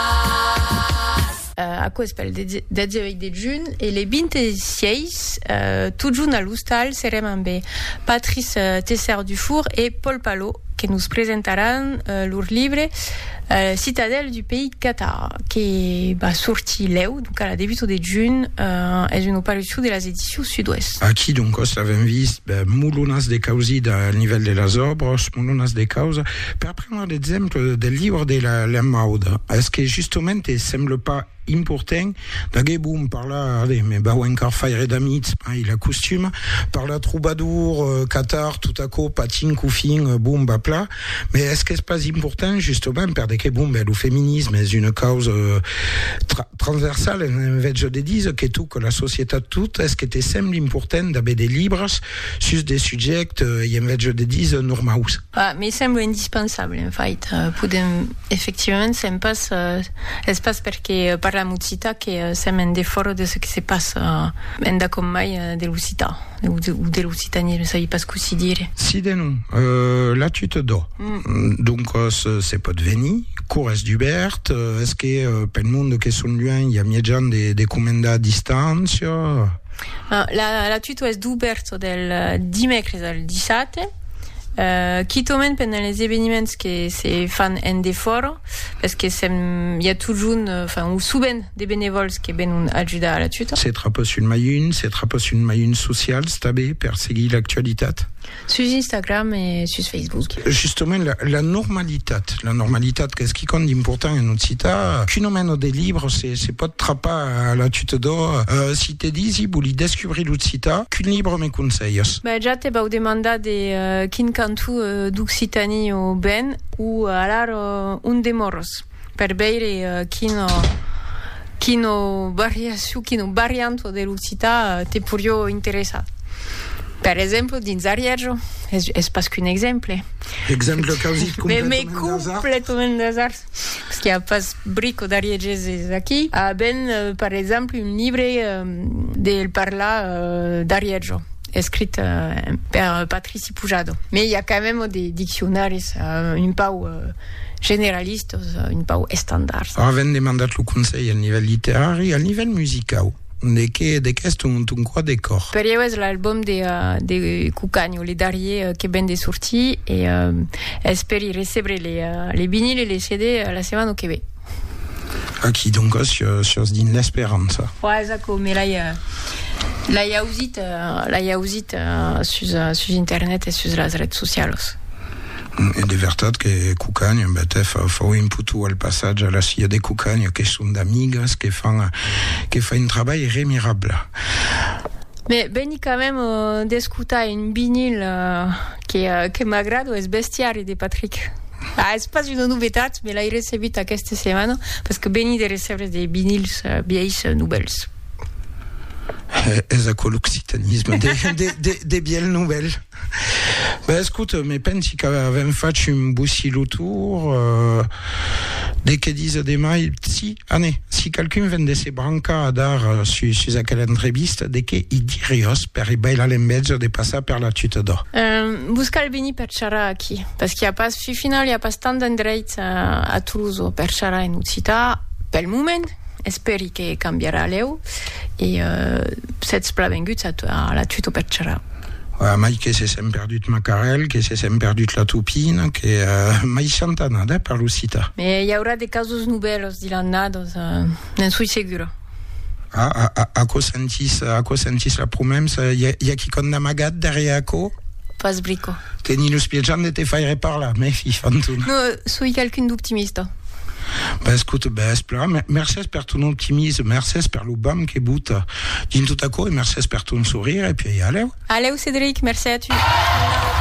Pas! Aquò es pel 18 de junh e le 26, totjorn a l'ostal, serem ambe Patrice Tessart-Dufour e Paul Palot que nos presentaràn lor libre Citadelle du pays Cathare que va sortir lèu, donc a la debuta de junh, es una parucion de las Edicions Sud-Ouest. Aquí doncòs l'avèm vist, mulhonas de causida al nivèl de las òbras, mulhonas de causa. Per prendre l'exemple del libre de la lenmauda, es que justement te semble pas important d'aguer bon parlar, ave, me vau encar faire d'amics, mai la costuma, parlar trobadour, euh, catar tot aquò patin qu'au fin, euh, bon va pla, mais es qu'es pas important justement perde que bon ben lo feminisme es una causa, euh, tra transversal en en vètge de diser que toca la societat tot, es que te semble important d'aver de libres sus de subjèctes, euh, ei en vètge de diser normaus. Bah, me sembla indispensable, en fait. Podem, efectivament, sèm pas... Es pas perque parlam occitan que sèm en defòra de çò que se passa endacòm mai de l'occitan, o de l'occitanisme, ne sabi pas cossí dire. Si de non, la tu te dò. Doncas, se pòt venir, cour es dubèrt, es que pel monde que son luènh i a mièjan de comendar distància? La tu t'o es dubèrt del dimècres al dissate. Euh, quitaument pendent les eveniments que se fan en defòra, pes que sèm, i a totjorn, enfin, o sovent, de benevòls que venon ajudar a la tuta. Se trapa sul Mayun, se trapa sul Mayun Socials tanben per seguir l'actualitat. Sus Instagram e sus Facebook. Justament, la, la normalitat, la normalitat qu'es quicòm d'important en Occità, qu'un omeno de libres, Se pòt trapar a la tuta d'or. Si te disi, voli descubrir l'occitan, quin libre me conselhas? Ben, ja te vau demandar de quin cantó d'Occitanie o ben, o alar ont demòres, per veire quina quina variacion, quina variant de l'occitan te porió interessar. Per exemple, dins Arièja, es pas qu'un exemple. Exemple quausit completament d'asard. Parce qu'il n'y a pas brico d'Arié Gesés aquí. A ben, per exemple, un libre del parlar d'Arièjo, escrit per Patrici Pujado. Mais i a quand même de diccionaris un pau generalistos, un pau estandards. A ben demandat lo conselh al nivèl literari, al nivèl musicau. De qué de qu'es ton ton quart de còr? Per ieu es l'album de de Cucanho, le darrier que ven de sortir e esperi recebre le le vinil e le CD la setmana que ve. Aqui donc sios dins l'esperança. Ua es aquò, me l'ai l'ai ausit l'ai ausit sus sus internet e sus las rets socialos. E de vertat que Cucagna, en bèth, fau un putu al passatge a la Cia de Cucagna, que son d'amigas, que fan, que fa un trabalh remirabla. Me veni quand même d'escotar un vinil que, que m'agrada, es Bestiari de Patrick. Ah, es pas una novetat, me l'ai recebut aquesta setmana, parce que veni de recebre des vinils vièis novèls. Es aquò l'occitanisme, de, de, de, de vièlh novèl. Ben escoute, me pensi qu'avèm fach un bocillo tour de que disa de mai, si, anè, si qualqu'un ven de se brancar a dar sus, sus aquela entrevista, de que i diriós per i bailar l'enveja de passar per la tuta d'ò? Vos cal venir per charrar aquí, parce qu'i a pas, fi final, i a pas tant d'endreits a Tolosa per charrar en occitan, pel moment, espèri que cambiarà lèu, e sètz plan venguts a la tuta per charrar. A mai que se sèm perdut Macarèl, que se sèm perdut la Tupina, que mai chanta anada eh, per l'Occità. Me i aurà de casos novèls de l'annada, doncs ne'n soi segura. Ah, a, a, aquò sentís, aquò sentís la promemsa, i a, i a quicòm d'amagat darrièr aquò? Pas brico. Teni lo spiejan de te faire parlar, me fi, Fantuna. No, soi qualqu'un d'optimista. B'escoute, b'espla. Mercés per ton optimisme, mercés per lo vam que bota. Dins tot aquò, e mercés per ton sorire, e puèi alèu. Alèu, Cedric, mercé a tu.